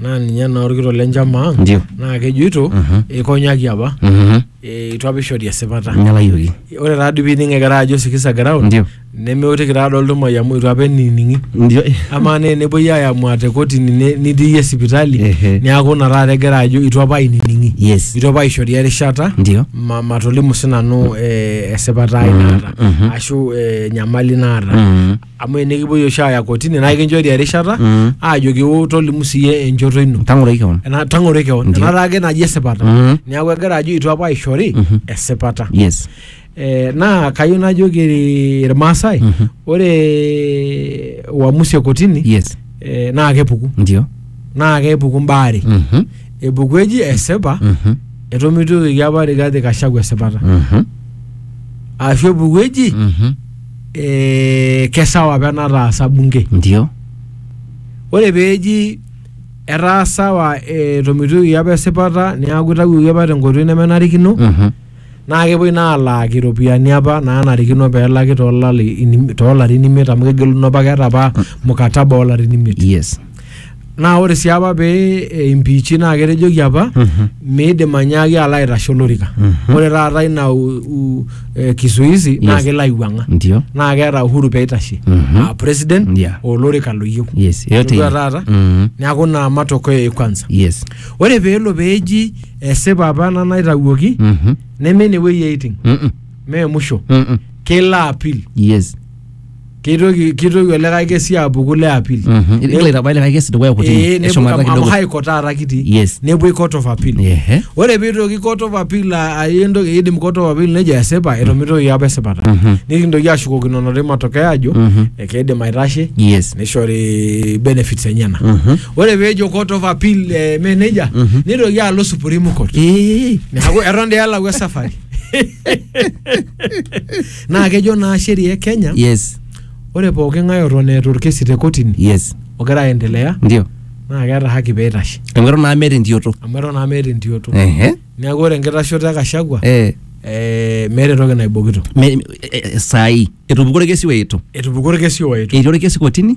naa ninye naa orkitok le njama ang Ndio. naa kejoito eikonyaki apa Mhm. eh, itu apa ishori esipata Nyalayioki. ore taa dii pining egira ajo sikiza ground Ndio. nemeutiki taa doi oltumai amu itu apa enining'i Ndio. amaa naa enepuoi aayamua te kotini ne- nitii iyie sipitali Ehe. neaku ina taata egira ajo itu apa ainining'i Yes. itu apa aishori erishata Ndio. ma- matolimu sinanu eh, esipata ai naata ashu eh, enyamali naata Mhm. amu enikipuoi oshi aaya kotini naa ekinchori erishata Mm. aajoki "Wo, tolimu siiyie enchoto ino tang'oro keon Ena- tang'oro keon Ndiyo. enataa ake naji esipata Mhm. neeku egira ajo itu apa aishori esipata yes Eh, naa kayieu najoki iri- irmaasai Mhm. ore uamusi e kotini yes eh, naa kepuku ndio naa kepuku mbaa are Mhm. epuku eji esipa Mhm. etomitoki apa Rigathi Gachagua esipata Mhm. ashu epuku eji Mhm. eh, kesawa apa enataasa bunge ndio ore peeji etaa sawa etomitioki apa esipata neaku itawuoki apa tenkoitoi nemenarikino Mhm. naa kepuoi naa alaaki iropiyiani apa naanarikino peelaki toolali- inim- toolarin imiet amu kegeluno apa keeta apa mukataba oolarin imiet yes Naa ore sii apa pee eh, impiichi naa ketejoki apa Mhm. miidim anyaaki alo aitashe olorika. Mhm. Ore taata ina u, u, eh, kisuizi naa Yes. kelo aiwuang'a. Ndio. Naa keeta uhuru pee eitashe. Mhm. Ah, president Yeah. olorika loyieu. Yes, yote Itodua ile. taata? Mhm. Neaku naa matokeo e kwanza. Yes. Ore pee elo pee eji esipa apa ena naitawuoki Mhm. neme ine wueji eiting. Mhm. Mee musho. Mhm. Kelo apil. Yes. keitoki keitoki olikae kesi apuku le appeal Mhm. Igil aitabai likae kesi dukuya Eh, kotini nepuo- eshumata amu kidogo high court taata kitii Yes. nepuoi court of appeal Ehe. ore piitoki court of appeal a- ayie entoki eidim court of appeal nejo esipa etomitoki apa esipata Mhm. nikintoki ashukokinono te matokeo ajo Mhm. ekeidim aitashe yes nishori benefits enyena Mhm. ore peejo court of appeal eh, me nejia Mhm. nitoki alo supreme court Eh. neaku eton dii elau esafari naa kejo naa sheria e kenya yes ore pooki ng'ae oton eeta orkesi te kotini yes ogira aendelea ndio naa keeta haki peitashe amu eton naa meeta entioto amu eton naa meeta entioto ehe neeku ore enkitashoto e kashagwa eh eh, meeta entoki naibokito me- eh, eh, saai etupukuo orkesi oetu etupukuo orkesi oetu etii orkesi kotini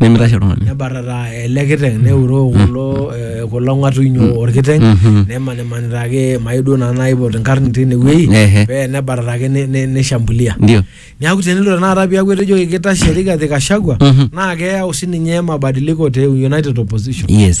nemitashe oltung'ani nebatata ele kiteng neuroo kulo eh, kulo ng'atuny orkiteng Mhm. nemanimanita ake mayieu duo naa naipot inkarn tinewueji Ehe. pee nebatata ake ne- ne- nishambulia ndio neeku tenelo tenakata piaku etejoki kitashe Rigathi Gachagua Mhm. naa keyau sininye mabadiliko te United Opposition yes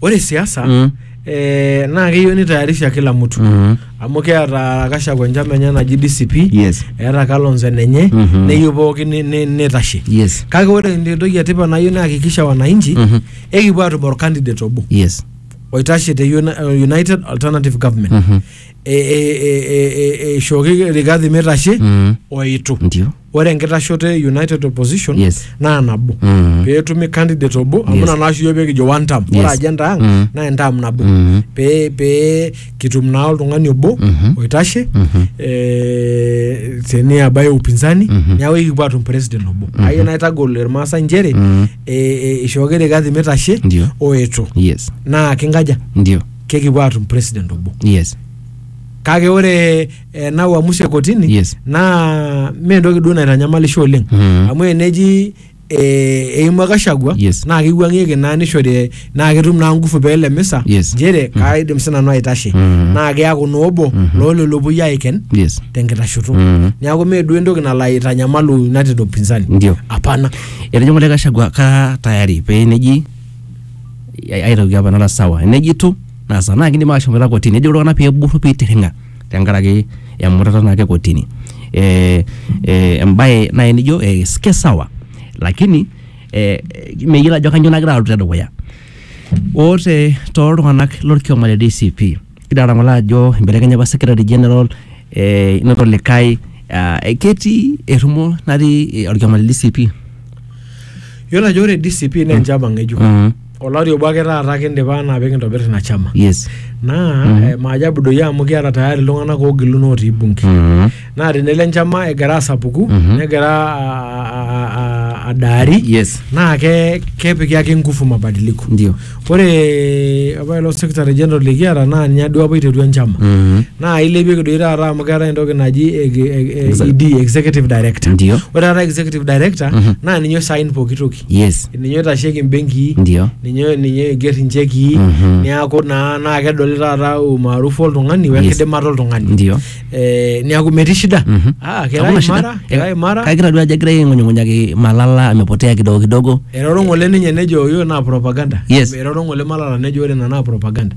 Ore siasa Mm. eh, naa keyieu nitayarisha kila mtu Mhm. amu keeta Gachagua enchama enye naji DCP Yes. eeta Kalonzo enenye Mhm. neyieu pookin ni- ni- nitashe Yes. kake ore entoki etipat nayieu nayakikisha wananchi Mhm. ekipuo atum orkandidate obo Yes. oitashe te Uni- uh, United Alternative Government Mhm. E- e- e- e- e- eishooki Rigathi mitashe Mhm. oitu Ndio. ore enkitashoto e united opposition Yes. naa nabo Mm. pee etumi candidate obo amu Yes. ina naa oshi iyiook pee kijo one term ore Yes. agenda ang Mm. naa entam nabo Mm. pee pee kitum naa oltung'ani obo Mhm. oitashe Mhm. eh, teniaba e upinzani Mhm. neeku ekipuo atum president obo ayieu naitagol irmaasai nchere Mm. eh, eh, ishooki rigathi mitashe Ndio. oetu yes naa kinkaja ndio kekipuo atum president obo yes kake ore eh, na uamuzi e kotini Yes. naa mee entoki duo naitanyamalisho oleng Mhm. amu eneji eh, eimua Gachagua Yes. naa keiwuang'ieki naa nishori naa ketum naa nguvu pee ele misa Yes. nchere kaidim sinanu aitashe Mhm. naa keaku naa obo loo lelo puoi aiken yes tenkitashoto Mhm. neaku mee duo entoki nalo aitanyamalu United upinzani Ndio. hapana etejo ngole Gachagua kara tayari pee neji ai- aitoki apa nara sawa neji tu nasa naa kidim ashomoita kotini nejo iltung'anak pee eburru pee eitirring'a tenkaraki emutata naake kotini. Ee ee embaye nai nijo ees ke sawa lakini ee meyiolo ajo kanyo nagira aloito te dukuya. Oo te too iltung'anak lorkioma le DCP kidolta ng'ole ajo ibelekenye apa secretary general ee inoto likai aa ketii errumo natii orkioma le DCP. Iyiolo ajo ore DCP naa enchama ng'ejuk. olari obo ake taata kindipa anaa pikintobir ina chama yes naa Mhm. eh, maajabu doi amu kiata tayari iltung'anak oogiluno otii bunge Mhm. naa tenelo enchama egira asapuku Mhm. negira a- a- a- a- adaari yes naa ke kepiki ake nguvu mabadiliko ndio ore apa ilo secretary general likiata naa ninye duo apa iterua enchama Mhm. naa ilepieki doi taata amu keetae entoki naji eg- eg- Exa- ED, executive director ndio ore taata executive director Mhm. naa ninye osain pooki toki yes ninye oitasheki imbenkii ndio ninye ninye oiger inchekii Mhm. niaku naa naa kedoli taata umaarufu oltung'ani Yes. wenkidimata oltung'ani ndio Eh, niaku metii shida Mhm. Ah, kira Hakuna shida. imara kira Eh, imara kagira duo ajo egira aing'unyung'unyaki malala amepotea kidogo kidogo eroro ng'ole ninye nejo yo naa propaganda Yes. eroro ng'ole malala nejo ore ina naa propaganda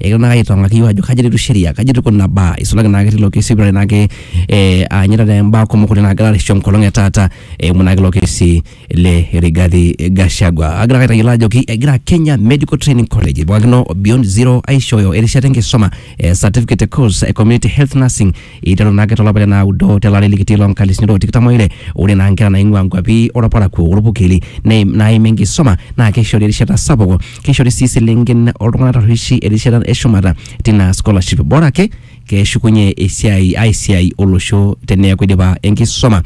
egira naa aitong'aki iyiok ajo kaji eloito sheria, kaji etiu kuna baa, isulaki naake tilo kesi oipirare naake eh, aanyu taata imbaa kumok oleng naagira arisio enkolong e taata eimu naake ilo kesi le Rigathi Gachagua. Agira ake aitayiolo ajoki egira Kenya Medical Training College ipikakino Beyond Zero aishooyo erishata enkisuma eh, certificate course e community health nursing iteru naake tolapa le naudo tele ari likitii loo nkalisuni loo tikitam oile. Ore naa nkera naing'ua nkuapi olparakuo olpurkeli neim naim enkisuma naa keishori erishata sapuk Keishori sii iselenken o ltung'ana tarrueshi erishata e shumata tina scholarship bora ake keshukunye esiai ai siai olosho teneaku eidipa enkisoma.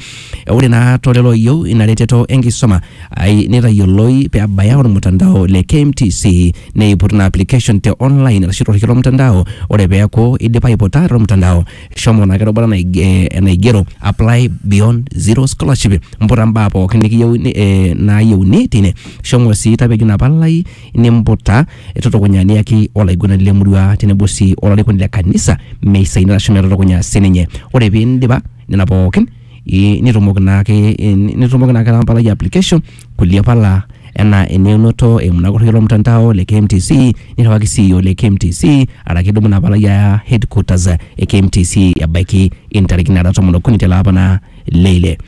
Ore naa to lelo ooyieu ina reteto e nkisoma ai neitayioloi pee ebaya olmutandao le KMTC neiput ina application te online arashu to lorrekie lo mtandao ore pee eaku eidipa aiputa to mtandao shomo naa kirubata naig- eh, enaigero apply beyond zero scholarship mputa mbaa pookin nikiyieuni eh, naayieuni tine shomo sii tapejo ina palai nimputa tutukunya niyaki olaiguanani le murua tenebo sii olarikoni le kanisa meisaina ashu metutukunya sininye ore piindipa nena pookin i- nitumoki naake eh, nitumoki naake ena palai e application kulie pala enaa eneunoto eimu ina korrei olmutandao le KMTC nirriwaki CEO le KMTC araki idumu ina palai aya headquarters e KMTC ebaiki intarikini naara tomon okuni tele apa naa le ile.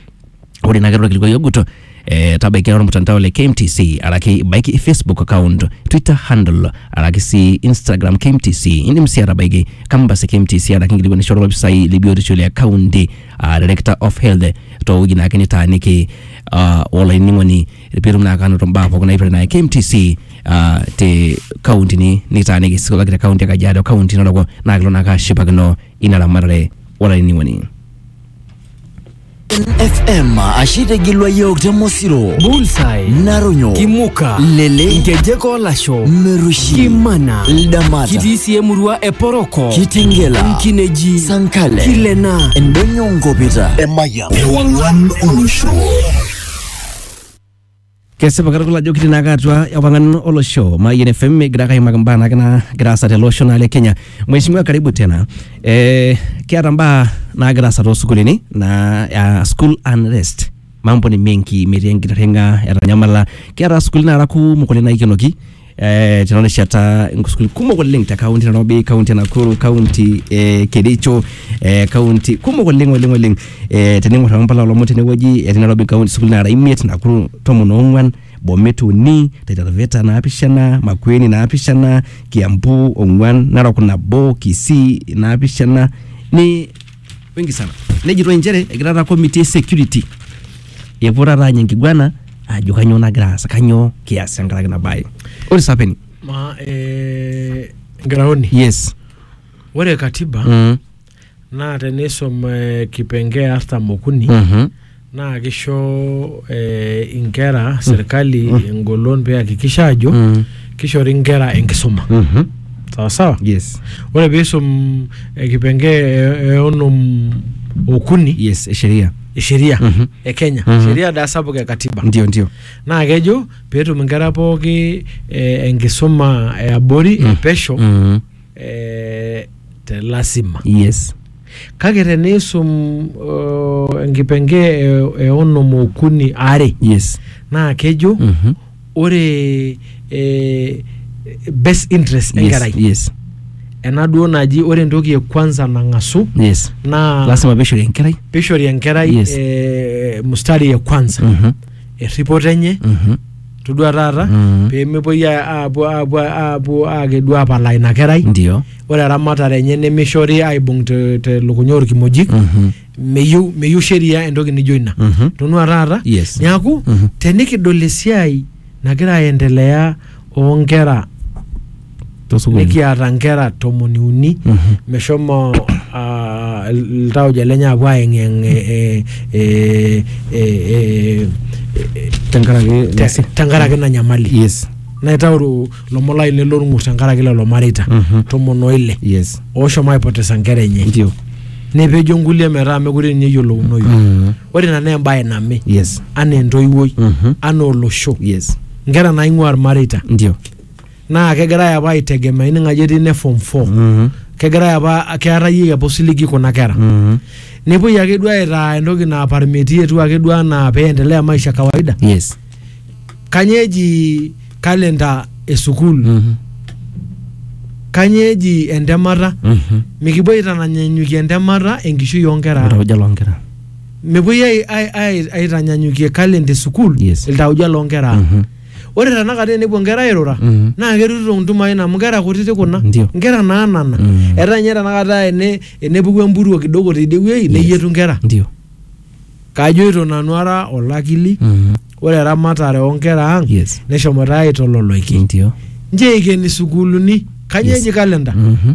Ore ina ake ilo kilikuai ogut eh, tabaiki olmutandao le KMTC araki ibaiki Facebook account, Twitter handle araki sii Instagram KMTC. Indim sii atabaiki campus e KMTC araki inkilikuanisho olopisai le biotisho le kaunti aa director of health towueji naake nitaaniki uh, olainining'oni pitum naa kanoto mbaa pookin naipirta naa KMTC uh, te kauntini nitaaniki sikolaki te kaunti e Kajiado kaunti naroko naa kilo naa kashipakino ina ramatare olainining'oni FM ashe tegilwa yiok te Mosiro, Bullseye, Naronyo, Kimuka, Lele, Nkejek Olasho, Merushi, Kimana, Ldamata, kitii sii emurua e Poroko, Kitingela, Nkineji, Sankale, Kilena, Endonyo Nkopita. Ewangan Olosho. kesipa katukul ajo kitii naake atua ewangan olosho mayian fm egira ake aimaki mbaa naake naagira aasa tele osho naa le kenya mheshimiwa karibu tena eh, kiata mbaa naagira aasa toosukulini naa uh, school unrest mambo ni mengi metii enkitirring'a etanyamala kiata sukuulini naara kumok oleng naikenoki eh, tena rishata nkusukuil kumok oleng te kaunti e Nairobi, kaunti e Nakuru, kaunti e Kericho, eh, kaunti kumok oleng oleng oleng eh, tening'or ake mpala olomon tenewueji etii Nairobi kaunti sukuul nara imiet, Nakuru tomon oong'wan, Bomet uni, Taita Taveta naapishana, Makueni naapishana, Kiambu ong'wan, Narok nabo, Kisii naapishana ni wengi sana nejitoi nchere egira taata committee e security epuo taata anya enkiguana ajo kanyoo nagira aasa kanyoo kias tenkaraki ina bae ore sapeni Ma eh, Graoni, yes ore katiba mm. naa tenisum eh, kipengee artam okuni Mhm. naa kisho eh, inkera serkali engolon peakikisha ajo Mm. kishori inkera enkisuma Mhm. sawa sawa yes ore piisum eh, kipenge eh, eh, onom okuni yes esheria e sheria Mhm. e kenya Mhm. sheria daa sapuk e katiba ndio ndio naa kejo peetum inkera pooki eh, enkisuma eabori Mhm. epesho Mhm. eh, te lasima. yes Kake teniisum uh, enkipenge e, e onom okuni are yes naa kejo Mhm. ore eh, best interest yes enkerai yes ena duo naji ore entoki e kwanza nang'asu yes naa lasima pishori enkerai pishori enkerai Yes. eh, mustari e kwanza Mhm. erripoto enye Mhm. todua taata Mhm. pemepuoi a- apuo apuo apuo akedu apalaa ina kerai ndio ore eramatare enye nemishori aibung te- telukunya orkimojik Mhm. meyieu meyieu sheria entoki nijo ina Mhm. tonua taata Yes. niaku Mhm. tenikidol esiai nagira aendelea onkera tosukuulini nikiata nkera tomoni uni meshomo ah, il- iltauja lenye apuo aeng'eng eh, eh, eh, eh, tenkaraki te- tenkaraki ina nyamali yes naitauru lomon lainei lorng'ur tenkaraki lelo mareita Mhm. tomon oile yes ooshomo aipotesa nkera enye ndio nepejo nkulie metaa mekure ninye eyiolounoyu Mhm. ore ina naa embaye name yes anaa entoiwuoi Mhm. anaa olosho yes nkera naing'ua irmareita ndio naa kegirae apa aitegemea ining ajo etii ne form four Mhm. kegirae apa keetayieki apa osiligi kuna kera Mhm. nepuoi ake duo aitaa entoki naa parmeti etiu ake duo anaa peendelea maisha kawaida yes kanyoo eji kalenda e sukuul Mhm. kanyoo eji entemata Mhm. mikipuo aitanyanyukie entemata enkishui oonkera ang. Iltauja loonkera mepuoi ai- ai- ai- aitanyanyukie kalenda e sukuul Yes. iltauja loonkera ang. Mhm. Ore tenakata enepuo nkera airura Mhm. naa kerutito ntumain amu nkera kutiti kuna Ndio. nkera naanana Mm. etaa ninye tenakata ene enepuku empuruo kidogo tidie wueji neyietu nkera ndio kajoito nanu ara olakili Mhm. ore eramatare oonkera ang Yes. neshomoita aitololoiki ndio nche eikeni sukuuluni kanyoo Yes. eji kalenda Mhm.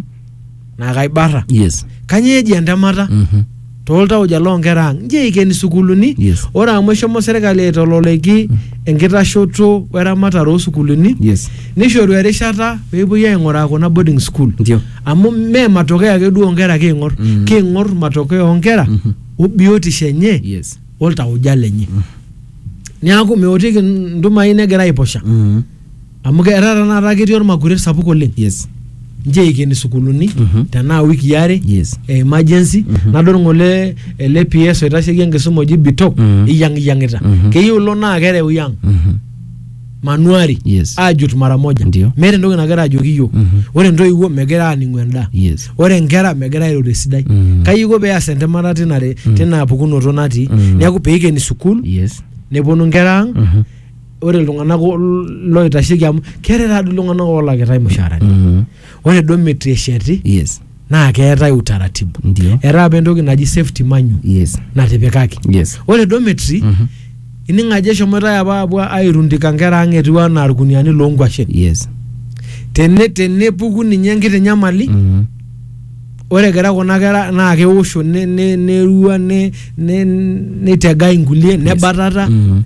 naa kaibara yes kanyoo eji entemata Mhm. tooltauja loonkera ang nji eikeni sukuuluni Yes. ore amu eshomo serkali aitololeki enkitashoto weramatare oosukuuluni yes nishoru erishata peepuoi aing'uraa kuna boarding school ndio amu mee matokeo ake duo onkera kiing'or Mm. kiing'or matokeo onkera Mhm. obiotisho enye yes oltauja lenye niaku meotiki ntumai negira aiposha Mhm. Amu ke- etaa tenakata ketii ormakuret sapuk oleng yes nche eikeni sukuuluni Mhm. tenaa wiki are Yes. e emergency nadol ngole ele PS oitasheki enkisuma oji Bitok Mhm. iyiang'iyiang'ita Mhm. keyieu ilo naa kereu yang Mhm. manuari Yes. ajut mara moja Ndio. meeta entoki nagira ajoki iyiok Mhm. ore ntoiwuo megira aaning'u endaa yes ore nkera megira airo tesidai Mhm. kai iko peas entemata tina re- tina pukunoto natii Mhm. neeku peikeni sukuul yes neponu nkera ang Mhm. ore iltung'anak o- loitasheki amu keetae taadoi iltung'anak oolakitae mushaarani Mhm. ore duo metu esheti yes naa keetae utaratibu ndio etaa apa entoki naji safety manual yes natipikaki yes ore dormitory Mhm. ining ajo eshomoitae apa apuo airundika nkera ang etiu anaa irkuniani loonkwashen yes Tene- tenepuku ninye enkiti nyamali Mhm. ore egira kuna kera naa keosho ne- ne- nerua ne- ne- neitegai nkulie nebatata Mhm.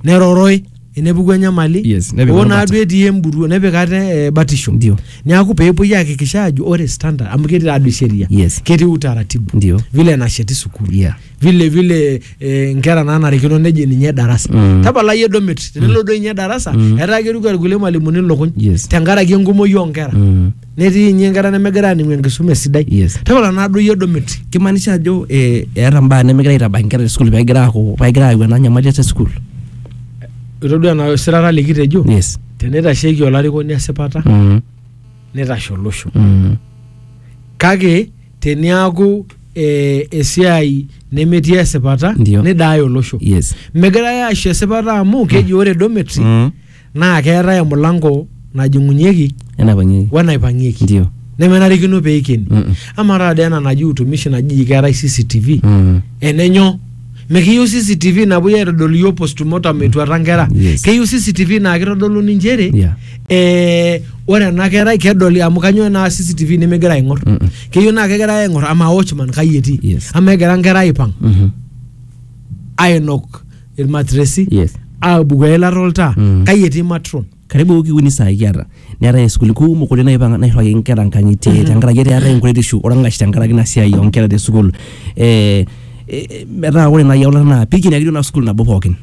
neroroi enepuku enyamali Yes, nepik oo orubata. naaduo etii emburuo nepik ate eh, batisho Ndio. neaku peepuoi aakikisha ajo ore standard amu ketii taadoi sheria Yes. ketii utaratibu Ndio. vile nasheti sukuul Yeah. vile vile eh, nkera naanarikino neji ninye darasa Mm. tapalai edomit tenelo duo ninye darasa etaa keruko irkulie malimuni lukuny Yes. tenkaraki enkumoi oo nkera Mm. netii inye inkera nemegira aaning'u enkisuma esidai Yes. tapala nadoyio dometi kimaanisha ajo eh, eeta mbaa nemegira aitabaki inkera te school pegira aaku pegira ayau ena nyamali te school itodua ena sirata likitejo yes teneitasheiki olarikoni esipata mm. neitashe olosho Mm. kake teniaku eh, esiai nemetii esipata Ndio. nidaaya olosho yes megirae aisho esipata amu keji ore dometi Mm. naa keetae emulango najing'unyieki enapang'ieki wenaipang'ieki ndio nemenarikino pee eikeni Mm-mm. ama taata ena naji utumishi naji keetae cctv Mm. enenyo mikiyieu cctv napuoi aitodol iyiok postmortem etuata nkera Yes. keyieu cctv naa kitodolu nchere Yeah. eh, ore ena kerai kedoli amu kanyoo naa cctv nimigira aing'or Mm-mm. keyieu naa kegira aing'or ama watchman kai etii Yes. ama egira nkera aipang Mhm. ainok ilmatresi Yes. aabuku eilata oltaa Mm. kai etii matron karibu wiki uni saa kiata neetae isukuli kumok oleng naipanga nairriwaki inkera nkang'itie tenkaraki eetae enkuretishu orng'ash tenkaraki ina siai oonkera te sukuul eh, eh, metaa ore nai eulata naa pikini ake duo ina sukuul nabo pookin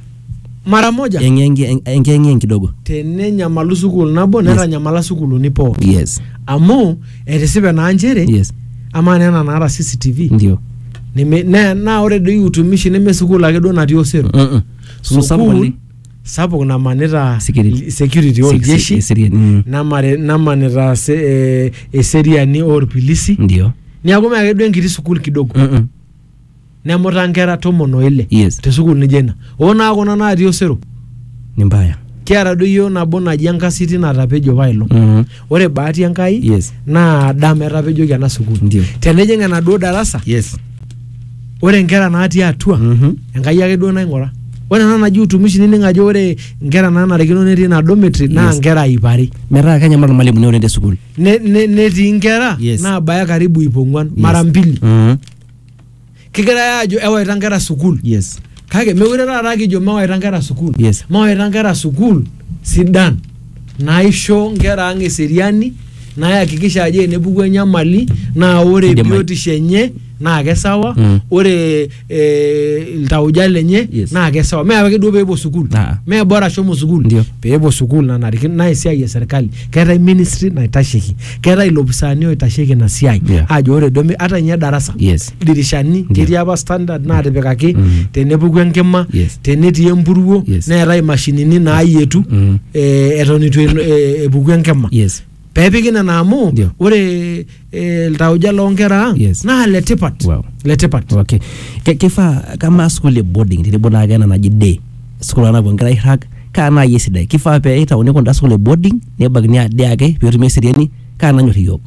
mara moja enkiyeng'iyeng kidogo tenenyamalu sukuul nabo Yes. netanyamala sukuuluni pooki yes amu etisipe naa nchere yes amaa naa ena naata cctv ndio neme- naa naa ore doi utumishi neme sukuul ake duo natii osero Mm-mm. Sukuul sapuk oleng. sapuk namanita Security. security Sek- oljeshi eserian, mm. namare- namanita se- eh, eseriani orpilisi ndio niaku meake duo enkiti sukuul kidogo Mm-mm. nemuta nkera tomon o ile Yes. te sukuul nijo ina oo naa kuna naatii osero ni mbaya kiata doi iyiook nabo naji enkasiti natapejo pailong Mhm. ore bahati enkai Yes. naa dama etapejoki ena sukuul Ndio. tenijing enaduo darasa yes ore nkera natii atua Mhm. enkai ake duo naing'ura ore ena naji utumishi nining ajo ore nkera naanarikino netii ina dormitory naa Yes. nkera iip are metaa kenyamal irmalimuni oleng te sukuul Ne- ne- netii nkera Yes. naabaya karibu iip ong'uan mara mbili Mhm. kigirae aajo ewaita nkera sukuul yes kake mekure taata kijo mawaita nkera sukuul Yes. mawaita nkera sukuul sidan naisho nkera ang eseriani nayakikisha ajo enepuku enyamali naa ore Kidim ai- biotisho enye naa kesawa Mm. ore eh, iltauja lenye Yes. naa kesawa mee ake duo peepuo sukuul Ah. mee bora shomo sukuul Ndio. peepuo sukuul nanarikino naa esiai e serkali keetae ministry naitasheki keetae ilopisaani oitasheki ina siai Yeah. ajo ore duo mi- ata ninye darasa Yes. dirishani Ndio. ketii apa standard naatipikaki Mhm. tenepuku enkima Yes. tenetii empuruo Yes. neetae imashinini naayietu Mhm. eh, eton itu elo- eh, epuku enkima Yes. peepiki nena amu Ndio. ore eh, iltauja loo nkera ang Yes. naa letipat Wow. letipat okay Ke- kifaa kama school e boarding tenebo naake ena naji day school anapuo nkera airrag kaa naai esidai kifaa pee itauni kunda school e boarding nebakini ade ake peetumi eseriani kaa nanyor iyiook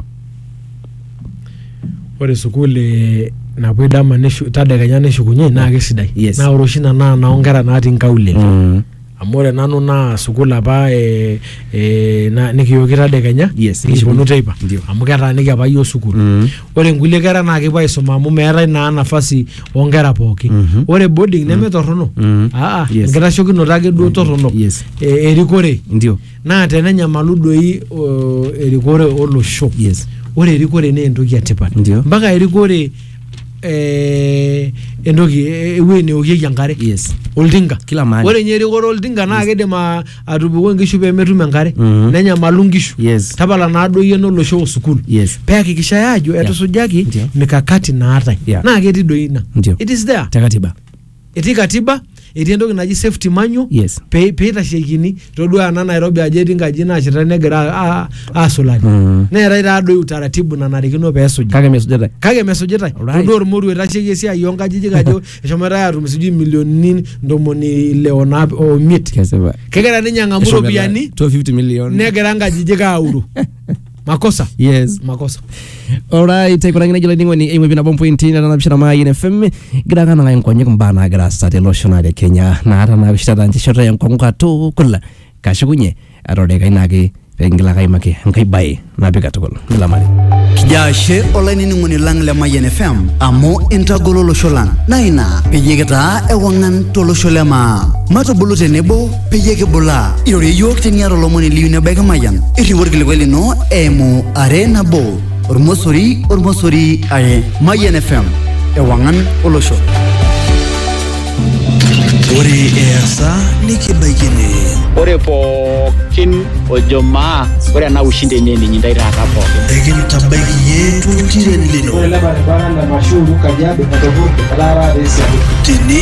ore sukuul eh, napuoi dama neshu- tadekenya neshukunye naa kesidai Yes. naa ore oshi ina naa noo nkera natii nkaulele Mm. amu ore nanu naa sukuul apa e, e, na, nikiyooki tadekenya Yes, nikiponu teipa ndio. amu ketaaniki apa yioo sukuul Mm. ore inkulie kera naa kepuo aisuma amu meetae naa nafasi oonkera pooki Mhm. ore boarding nemetorrono Mhm. aa Yes. enkitashokinoto ake duo torrono Yes. e, erikore ndio naa tenenyamalu doi o, erikore olosho Yes. ore erikore naa entoki etipat Ndio. mpaka erikore eh, entoki eh, ewueji neokieki enkare Yes. oltinka Kila mahali. ore ninye erikore oltinka naa kidim a- atupuku nkishu pemetum enkare Mhm. nenyamalu nkishu Yes. tapala naa doi eno olosho o sukuul Yes. peakikishai ajo etusujaki Ndio. mikakati naatae Yeah. naa ketii doi ina Ndio. it is there Te katiba. etii katiba etii entoki naji safety manual Yes. pe- peitasheikini todua ena nairobi ajo etii nkaji naasheta negira a- a- aasulari Mm. neetae taadoi utaratibu nanarikino peesuji kake mesujata kake mesujitae Alright. todua ormoruo oitasheki esiai oonkajijik ajo eshomoitae atum sijui milionini ntomoni ile o naap- o miet kesipa kegira ninye ang'amu Eshomo iropiyiani to 50 million negira nkajijik auru makosa yes makosa alright aikunakina jilo ning'oni eimu pinabo mpointi netanapishana maayin fm gira ake anang'aki nkonyek mbaa naagira aasa tele osho naa le kenya naata naapishitata nchishoto enkong'u katukul kashukunye atorekai naake pekingila ake aimaki enkai bae napi katukul nilamari Kijaa ashe olainining'oni lang le Mayian FM amu intagolo olosho lang. Naa ina peyie kitaa ewang'an tolosho le maa. Matubulu tenebo peyie kibulaa irorie iyiook teniata olomoni liyu nebaiki emayian irriu orkilikuai lino eimu are nabo ormosori ormosori are mayian fm ewang'an olosho ore easa nikibaiki ene ore pookin ojo maa ore ena ushindi enye eninyi intae taata pookin ekintabaiki iyie toltiren lino Ore ele baribara le Mashuru Kajiado Katopurdo etaara te Isiolo. tene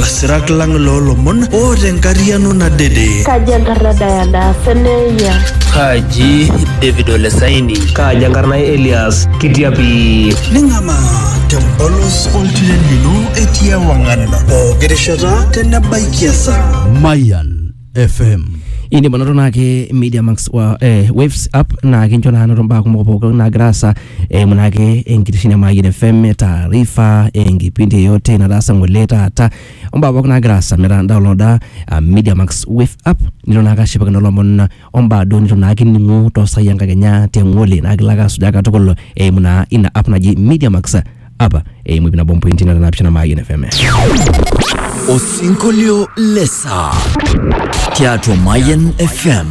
Lasirak lang loo lomon o te nkariano nadede. Kaji enkarna Diana Seneya? Kaji David Olesaini? Kaji enkarna Elias Kitiapi? Ning'amaa tempolos oltiren lino etii ewang'an pooki rishata tenebaikia esaa. Mayan FM. indim anoto naake media max wa eh, waves app naa kincho naa anoto mbaa kumok pookin naagira aasa eimu naake enkitesheni e Mayian FM taarifa enkipindi yeyote nataasa ng'ole taata ombaa pookin naagira aasa metaa downloada uh, media max wave app nilo naake ashipakino lomon ombaa duo nitu naake ining'u toosai enkakenya te ng'ole naa kilo ake asujaa katukul eimu naa ina app naji media max apa eimu ip nabo mpointi nara naapishana Mayian FM. Osinkolio le saa tiatua Mayian FM.